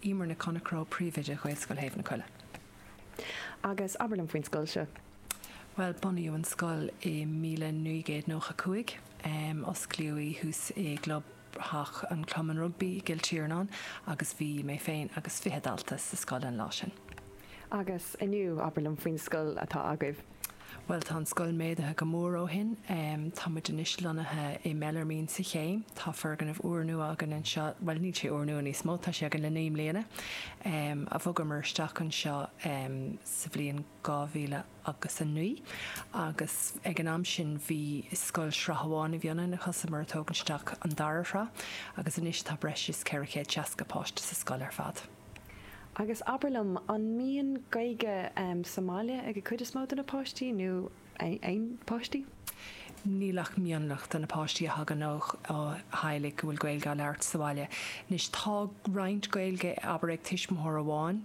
Emer Nic Chonchradha, Príomhoide Ghaelscoil Thaobh na Coille. Agus abair liom faoin scoil seo. Bhuel, bunaíodh an scoil i míle naoi gcéad nócha cúig. Osclaíodh í thuas i gclubtheach an chumainn rugbaí i gCill Tiarnáin agus bhí mé féin agus fiche dalta sa scoil an lá sin. Agus inniu, abair liom faoin scoil atá agaibh. Bhuel, tá an scoil méadaithe go mór ó shin. Tá muid anois lonnaithe i mBeallairmín sa Chéim. Tá foirgneamh úrnua againn anseo, bhuel, níl sé úrnua níos mó, tá sé againn le naoi mbliana. a bhogamar isteach anseo sa bhliain dhá mhíle agus a naoi agus ag an am sin bhí scoil sraith amháin a bhí ionainn a thosaíomar ag tógaint isteach an dara shraith agus anois tá breis is ceithre chéad seasca páiste sa scoil ar fad. Agus abair liom, an mbíonn Gaeilge sa mbaile ag an gcuid is mó de na páistí, nó aon pháistí? Níl ach mionlach de na páistí a thagann ó theaghlaigh go bhfuil Gaeilge á labhairt sa bhaile. Anois, tá roinnt Gaeilge, abair, ag tuismitheoir amháin.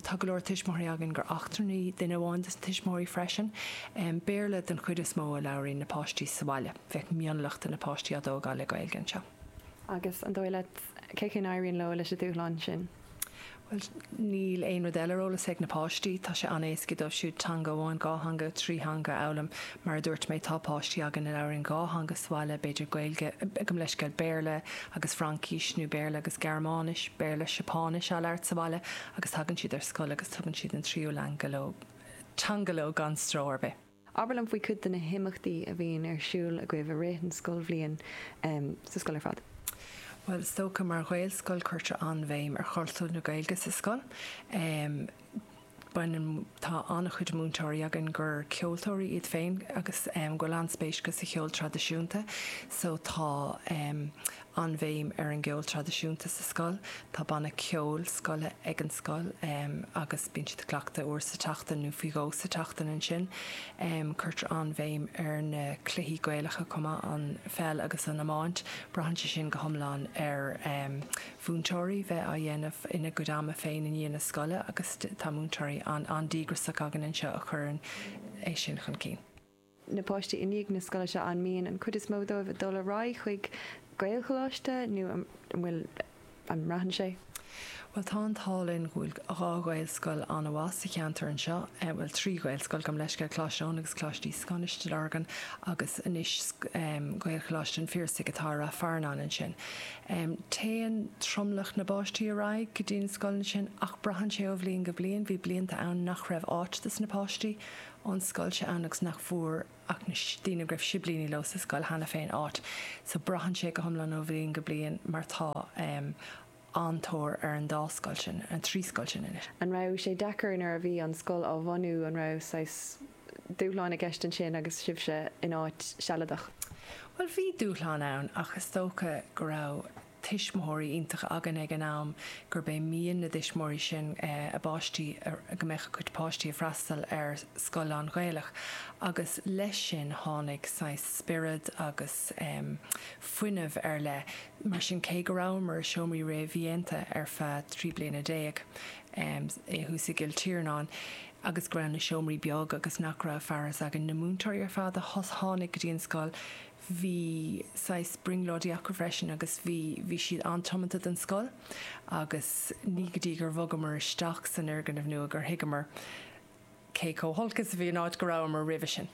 Tá go leor tuismitheoirí againn gur eachtrannaigh duine amháin des na tuismitheoirí freisin. Béarla den chuid is mó a labhraíonn na páistí sa bhaile. Bheadh mionlach de na páistí á dtógáil le Gaeilge anseo. Agus an dóigh leat cén chaoi a n-éiríonn leo leis an dúshlán sin? Bhuel, níl aon rud eile ar eolas ag na páistí. Tá sé an-éasca dóibh siúd teanga amháin, dhá theanga, trí theanga a fhoghlaim. Mar a dúirt mé, tá páistí againn a labhraíonn dhá theanga sa bhaile, b'fhéidir Gaeilge, gabh mo leithscéal, Béarla agus Fraincis, nó Béarla agus Gearmáinis, Béarla, Seapáinis á labhairt sa bhaile agus tagann siad ar scoil agus tugann siad an tríú leanga leo, teanga leo gan stró ar bith. Abair liom faoi chuid de na himeachtaí a bhíonn ar siúl agaibh i rith an scoilbhliain sa scoil ar fad. Bhuel, is dócha mar ghaelscoil cuirtear an-bhéim ar chultúr na Gaeilge sa scoil. Baineann, tá an-chuid múinteoirí againn gur ceoltóirí iad féin agus go bhfuil an-spéis acu sa cheol traidisiúnta so tá an-bhéim ar an gceol traidisiúnta sa scoil. Tá banna ceoil scoile ag an scoil agus bíonn siad ag cleachtadh uair sa tseachtain nó faoi dhó sa tseachtain ansin. Cuirtear an-bhéim ar na cluichí Gaelacha chomh maith, an pheil agus an iomáint. Braitheann sé sin go hiomlán ar mhúinteoirí bheith á dhéanamh ina gcuid ama féin i ndiaidh na scoile agus tá múinteoirí an-díograiseach againn anseo a chuireann é sin chun cinn. na páistí i ndiaidh na scoile seo, an mian an chuid is mó dóibh a dhul ar aghaidh chuig Gaelcholáiste nó an bhfuil, an mbraitheann sé? Bhuel tá an t-ádh linn go bhfuil dhá Ghaelscoil an-mhaith sa cheantar anseo, bhuel trí Ghaelscoil, gabh mo leithscéal, Coláiste Eoin agus Coláiste Íosagáin i Stigh Lorgan agus anois Gaelcholáiste an Phiarsaigh atá i Ráth Fearnáin ansin. Téann tromlach na bpáistí ar aghaidh go dtí na scoileanna sin ach braitheann sé ó bhliain go bliain, bhí blianta ann nach raibh áit dos na páistí ón scoil seo ann agus nach bhfuair ach na daoine a raibh siblíní leo sa scoil cheana féin áit. So braitheann sé go hiomlán ó bhliain go bliain mar tá an-tóir ar an dá scoil sin, ar an trí scoil sin anois. An raibh sé deacair nuair a bhí an scoil á bhunú, an raibh saghas dúshláin i gceist ansin agus sibhse in áit sealadach? Bhuel, bhí dúshláin ann ach is dócha go raibh. tuismitheoirí iontacha againn ag an am, gurb é mian na dtuismitheoirí sin a bpáistí, go mbeadh a gcuid páistí ag freastal ar scoil lán-Ghaelach agus leis sin tháinig saghas spiorad agus fuinneamh ar leith. Mar sin, cé go rabhamar i seomraí réamhdhéanta ar feadh trí bliana déag i thuas i gCill Tiarnáin agus go raibh na seomraí beag agus nach raibh fearas againn na múinteoirí ar fad a tháinig go dtí an scoil, bhí saghas brionglóidí acu freisin agus bhí, bhí siad an-tiomanta don scoil agus ní go dtí gur bhogamar isteach san fhoirgneamh nua gur thuigeamar cé chomh holc is a bhí an áit go rabhamar roimhe sin.